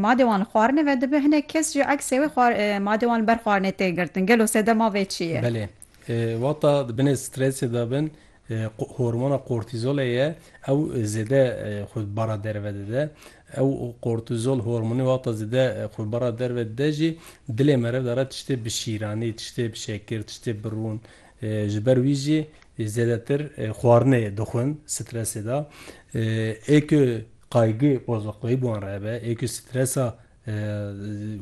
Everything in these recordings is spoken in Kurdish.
madê wan li xwarinê ve dibe, hinek kes jî eksê wê xwar madê wan li ber xwarinê tê girtin. Gelo sedema vê çi ye? Belê. Wata di binê stresê de bin, hormona kortîzolê ye, ew zêde xwe bi bara derve dide. Ew kortîzol hormonê wata zêde xwe bi bara derve dide jî, dilê meriv de re tiştê bi şîranî, tiştê bi şekir, tiştê bi rûn, Ji ber wî jî zêdetir xwarinê dixwin stresê de. Ê ku kaygı waza koyî bi wan re hebe, ê ku stresa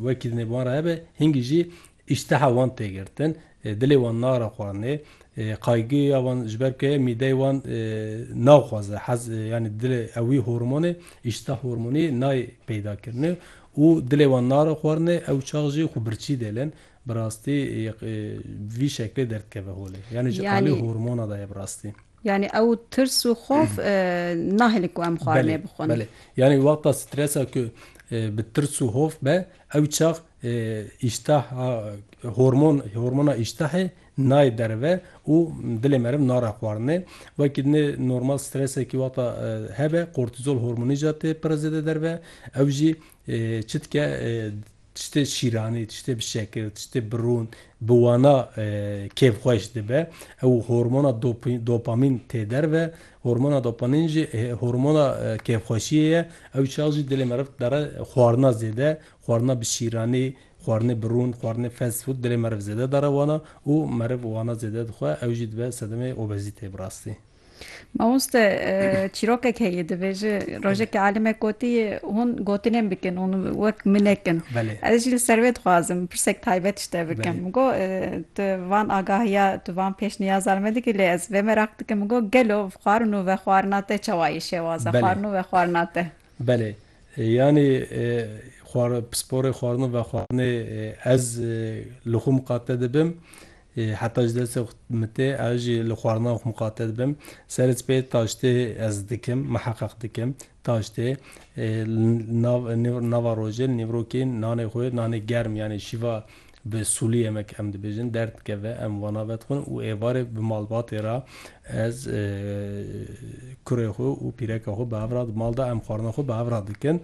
wekî dinê bi wan re hebe, hingî jî îşteha wan tê girtin, dilê wan nare xwarinê. Kaygıya wan ji ber ku heye mîdeyê wan naxwaze hez yanî dilê ew wî hormonê, îştah hormonî nayê peydakirinê û dilê wan nare xwarinê, ew çax jî xwe birçî dêlin. Bi rastî vî şeklê derdikeve holê. Yanî ji alî hormona de ye bi rastî. Yanî ew tirs û xof nahêlin ku em xwarinê bixwin. Belê. Yanî wexta stresa ku bi tirs û hof be ew çax îştaha hormon hormona îştahê nayê derve û dilê meriv nare xwarinê. Wekî dinê normal stresekî wexta hebe kortîzol hormonî jî tê pire zêde derve. Ew jî çi dike tiştê şîranî, tiştê bi şekir, tiştê bi rûn, bi wana kêfxweş dibe. Ew hormona dopamîn tê derve. Hormona dopamîn jî hormona kêfxweşiyê ye. Ew çax jî dilê meriv didere xwarina zêde, xwarina bi şîranî, xwarinê bi rûn, xwarinê fast food dilê meriv zêde didere wana û meriv wana zêde dixwe ew jî dibe sedemê obezîteyê bi rastî. Mamoste çîrokek heye dibêje rojekê alimek gotiye hûn gotinên bikin hûn wek min nekin. Ez jî li ser wê dixwazim pirsek taybet ji te bikim. Min got tu van agahiya tu van pêşniyaza li me dikî lê ez vê meraq dikim min got gelo xwarin û vexwarina te çawa yê şêwaza xwarin û vexwarina te. Belê yanî pisporê xwarin û vexwarinê ez li xwe miqate dibim Heta ji destê xwe mitê ez jî li xwarina xwe miqate dibim. Serê sipê taştê ez dikim, miheqeq dikim. Taştê nava rojê li nîvrokê nanê xwe, nanê germ yanî şîva bi sûlî yemek em dibêjin der dikeve, em wana vedixwin û êvarê bi malbatê re ez kurê xwe û pîreka xwe bi hev re di mal de em xwarina xwe bi hev re dikin.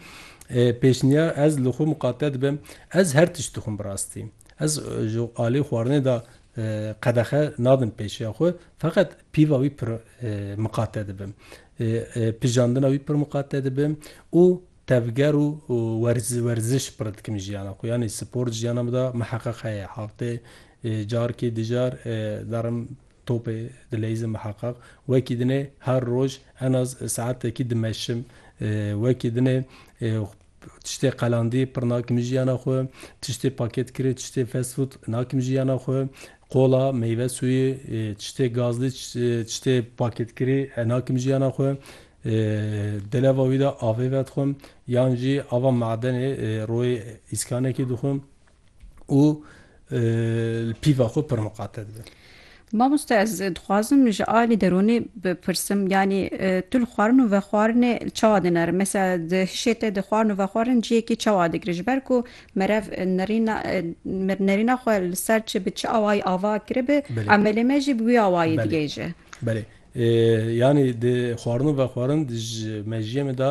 Pêşniyar ez li xwe miqate dibim, ez her tişt dixwim bi rastî. Ez ji aliyê xwarinê de qedexe nadim pêşiya xwe, feqet pîva wî pir miqate dibim, pijandina wî pir miqate dibim û tevger û werziş pir dikim jiyana xwe. Yanî spor di jiyana min de miheqeq heye. Heftê carkê du car derim topê dileyizim miheqeq. Wekî dinê her roj en az saetekî dimeşim. Wekî dinê. Tiştê qelandî pir nakim ji jiyana xwe, tiştê pakêtkirî, tiştê fast food nakim ji jiyana xwe, qola, meyve sûyî, tiştê gazlî, tiştê pakêtkirî nakim ji jiyana xwe. Di leva wî de avê vedixwim yan jî ava madenê royê îskanekî dixwim. û li pîva xwe pir miqate dibin. Mamoste ez dixwazim ji alî deronê bipirsim yanî tu li xwarin û vexwarinê çawa dinerim? Mesela di hişê te di xwarin û vexwarin ciyekî çawa digre ji ber ku merev nerîna nerîna xwe li ser çi bi çi awayî ava kiribe emelê me jî bi wî awayî digihêje. Belê Yanî di xwarin û vexwarin di ji mejiyê min de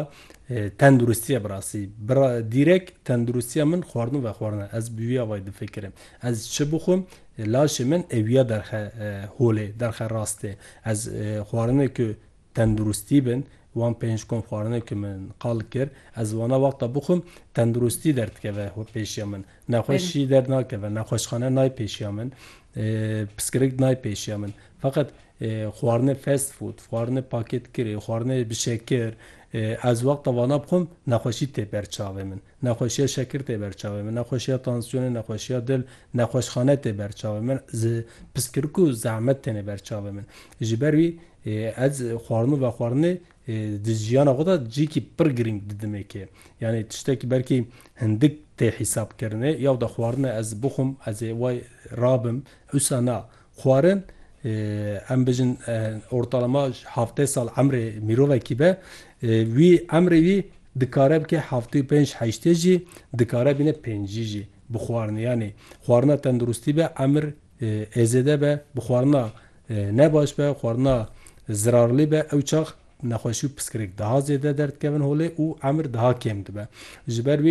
tenduristî ye bi rastî. Dîrek tenduristiya min xwarin û vexwarin e. Ez bi wî avayî difikirim. Ez çi bixwim laşê min ewîya derxe holê, derxe rastê. Ez xwarinê ku tenduristî bin, wan pênc kom xwarinê ku min qal kir, ez wana wexta bixwim tenduristî derdikeve pêşiya min. Nexweşî derdnakeve, nexweşxane nayê pêşiya min, piskirik nayê pêşiya min. Feqet xwarinê fast food, xwarinê pakêtkirê, xwarinê bi şekir, ez wexta vana bixwim nexweşî tê ber çavê min. Nexweşiya şekir tê ber çavê min, nexweşiya tansiyonê, nexweşiya dil, nexweşxane tê ber çavê min, piskirik û zehmet têne ber çavê min. Ji ber wî ez xwarin û vexwarinê di jiyana xwe de cihekî pir girîng didim ê kê. Yanî tiştekî belkî hindik tê hîsabkirinê, ya wexta xwarinê ez bixwim, ez ê wê rabim, wisa na. Xwarin, em bijin ortalama heftê sal emrê mirovekî be, wî emrê wî dikare bike heftê û pênc heştê jî, dikare bîne pêncî jî bi xwarinê. Yanî xwarina tenduristî be emir ê zêde be, bi xwarina ne baş be, xwarina zirarlî be ew çax nexweşî û piskirêk daha zêde derdikevin holê û emir daha kêm dibe. Ji ber wî.